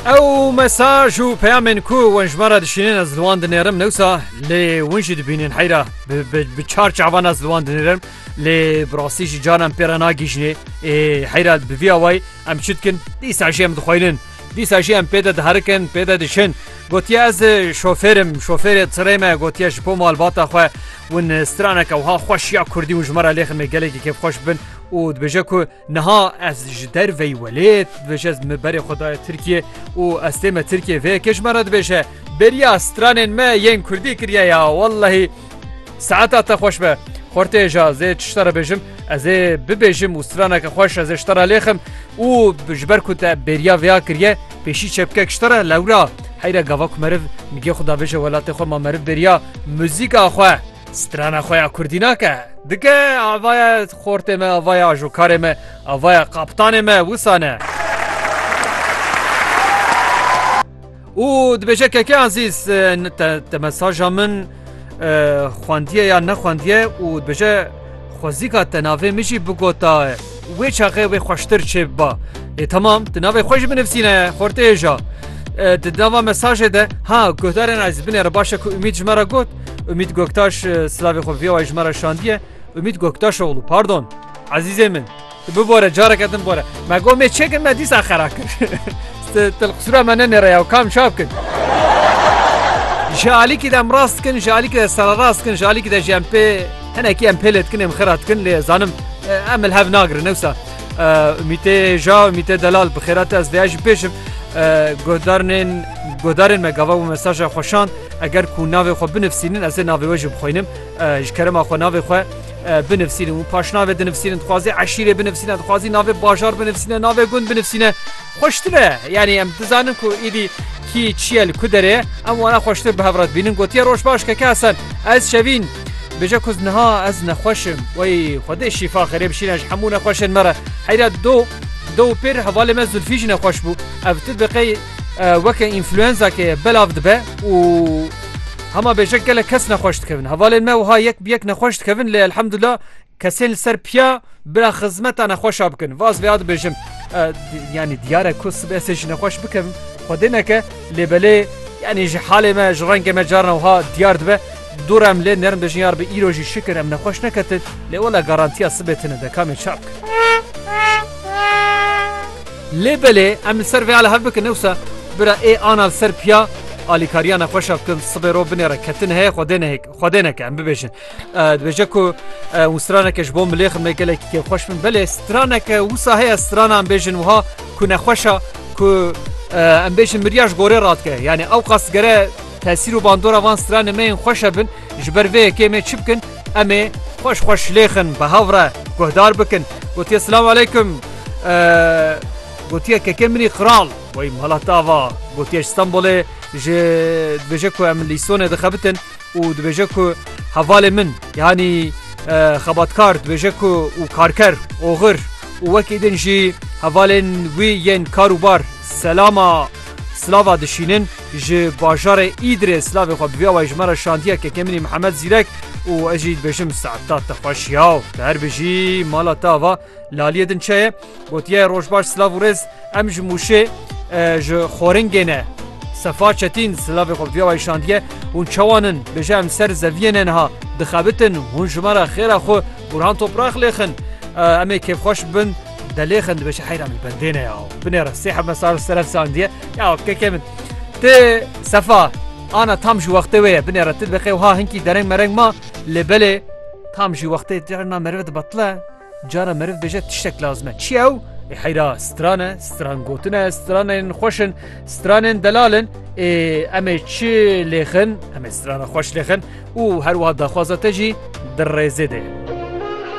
Ew mesaj û peyamên ku wan ji me re dişînin ez li wan dinêrim newsa lê win jî dibînin heyra bi çar çavan ez li wan dinêrim lê bi rastî jî canan pê re nagîjinê ê heyra bi vî away em çi dikin dîsa jî em dixwînin dîsa jî em pê de diherikin pê de diçin gotiye ez şofêrim şofêrê tirê me gotiye ji bo malbata xwe win straneke wiha xweş ya kurdî û ji me re lêxin me gelekî kêfxweş bin û dibêje ku Niha ez ji derveyî welêt dibêje ez me berê xwe daye Tirkiyê û ez tê me Tirkiyê vê yekê ji me re dibêje beriya stranên me yên Kurdî kiriye ya wellehî saeta te xweş be. Xortê ja zê tişta re bêjim ez ê bibêjim û straneke xweş ez ê ji te re lêxim û ji ber ku te bêriya vêya kiriye pêşî çepkek ji te re lewra heyre gava ku meriv nigê xwe davêje welatê xwe ma meriv bêriya muzîka xwe strana xwe ya Kurdî nake dike avaya Xortê me ava ye, ajokarê me ava ye, kaptanê me wisa ne. Û dibêje Keke Azîz te mesaja min xwendiye ya nexwendiye û dibêje xwezîka te navê min jî bigota wê çaxê wê xweştir çê biba. Ê temam tu navê xwe jî binivîsîne xortê hêja. Di nava mesajê de ha guhdarên ez binêre baş e ku Umîd ji me re got Umîd Goktaş silavê xwe vîya wayî ji me re şandiye. Umît Goktaşoglû, Pardon, ezîzê min, tu bibore careke din bore. Me got me çê kir me dîsa xera kir. Tilqisûra me nenêre ya kam çap kir. Ji alîkî de em rast dikin, ji alîkî de sererast dikin, ji alîkî de jî em pê hinekî em pêlê dikin, em xera dikin lê zanim em li hev nagirin ewsa. Umîtê ja Umîtê delal bi xêra te ez vêya jî pêşim. Guhdarên guhdarên me gava û mesaja xweşan eger ku navê xwe binivîsînin ez ê navê we jî bixwînim. Ji kerema xwe navê xwe binivîsînin û paşnavê dinivîsînin dixwazê eşîrê binivîsîne dixwazî navê bajar binivîsîne navê gund binivîsîne xweştir e yanî em dizanin ku êdî kî çiye li ku derê em wana xweştir bi hevrat bînin gotiye roj baş keke Hesen ez şevîn bêje ku niha ez nexweşim wey xwedê şîfa xêrê bişîne ji hemû nexweşên me re heyra do do pêr hevalê me zulfî jî nexweş bû ev tu bi qey Weke înfluenzakê ye belav dibe û hema bêjek gelek kes nexweş dikevin. Hevalên me wiha yek bi yek nexweş dikevin lê elhemdullah kesên li ser piya bira xizmeta nexweşa bikin. Vaz vêya dibêjim yanî diyare ku sibê ez ê jî nexweş bikevim xwedê neke lê belê yanî ji halê me ji rengê me carna wiha diyar dibe. Dûr em lê nerin bêjin yar bi îro jî şikir em nexweş neketin lê wela garantiya sibê tune de kamê çap. Lê belê em li ser vê a li hev bikin ewsa bira ê ana li ser piya alîkariya nexweş a bikin sibê rov binê re ketin heye xwedê nehêk xwedê neke em bibêjin dibêje ku hûn straneke ji bo milê xirmê gelekî kê xweş bin belê straneke wisa heye strana em bêjin wiha ku nexweşa ku em bêjin mirya ji gorê radike yanî ew qas gere tesîr û bandora van stranê me yên xweş hebin Ji ber vê yekê em ê çi bikin? Em ê xwe ji xwe şilêxin, bi hev re guhdar bikin. Gotiye Silav aleykum. Gotiye kekê min î kral. Wey mala te ava. Gotiye ji Stenbolê ji dibêje ku em li Îstonê dixebitin û dibêje ku hevalê min yanî xebatkar dibêje ku û karker oxir û wekî din jî hevalên wî yên kar û bar selama silava dişînin. Ji bajarê Îdirê silavê xwe bibiya wê ji me re şandiye kekê min î Mihemed Zîrek û ez jî dibêjim Se'dat te xweş ya û te her bijî mala te ava laliyê din çi ye gotiye rojbaş silav û rêz em ji Mûşê ji Xoringê ne Sefa Çetîn silavê xwe bibiya wê şandiye hûn çawan in bêje em ser zeviyê ne niha dixebitin hûn ji me re xêra xwe Burhan Toprak lêxin em ê kêfxweş bin Delê xen dibeşe heyra min bendêne ya. Binê re sê heme sar seref sandiye. Ya keke min. Tê sefa. Ana tam ji wextê wê ye binê re ti dibeqê wiha hinkî dereng mereng ma lê belê tam ji wextê carna merive dibatile cara meriv bêje tiştek lazim e. Çi ew? Ê heyra stran e, stran gotin e, stranên xweş in, stranên delal in. Ê em ê çi lêxin, em ê strana xweş lêxin û her wiha daxwaza te jî di rêzê de ye.